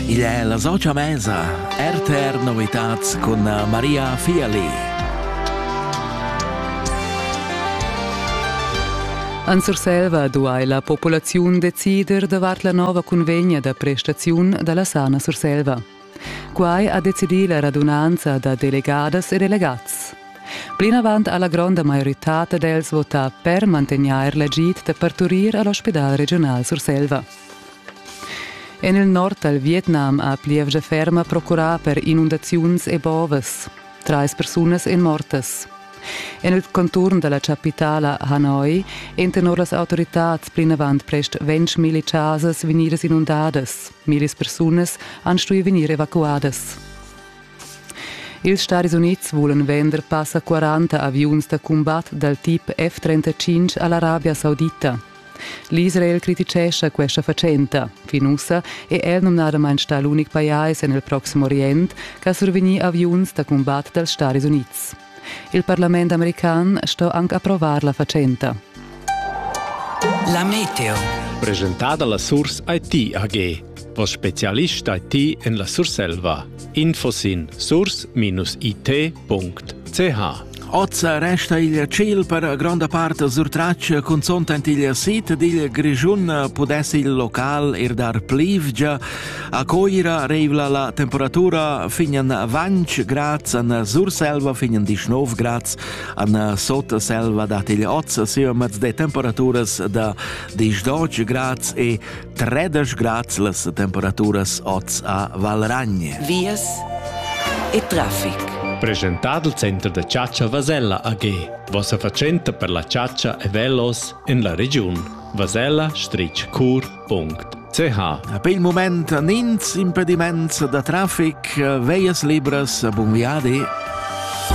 Igl è la socia mesa RTR Novitats cun Maria Fiali. En Surselva duai la populaziun decider davart la nova cunvegna da prestaziun da la Sana Surselva. Quai ha decidì la radunanza da delegadas e delegats. Plinavant ha la gronda maioritad d'els votà per mantegnair l'agid da parturir a l'ospidal regiunal Surselva. En il nord dal Vietnam ha plievgia ferma procurà per inundaziuns e bovas. Trais persunas èn mortas. En il conturn da la chapitala Hanoi èn tenor las autoritads plinavant prest ventg milli chasas vegnidas inundadas. Millis persunas han stuì vegnir evacuadas. Ils Stadis Unids vulan vender passa 40 aviuns da cumbat dal tip F-35 a l'Arabia Saudita. L'Israel criticescha questa fatschenta. Fin ussa è el numnadamain stà l'unic pajais en il Proxim Orient che ha survegnì aviuns da cumbat dals Stadis Unids. Il parlament american sto anche approvar la fatschenta. La meteo. Presentada la Source IT AG. O specialista ti en la Surselva. Info sin source-it.ch Ozza resta il ciel per gronda parte surtraccia consonta il sit dil Grischun pudess il local er dar plivgia. A Coira reivla la temperatura fin an Vanch grads, an Surselva fin an Dischnov grads, an Sotselva dat il Ozza siomets de temperaturas da 10 grads e Tredesch grad las temperaturas oz a Valragnie. Vias e traffic. Presentado il Center da Ciaccia Vasella AG. Vossa fatschenta per la ciaccia e velos en la regiun. vasella-cur.ch Per il moment nins impediments da traffic, veias libras, bun viadi.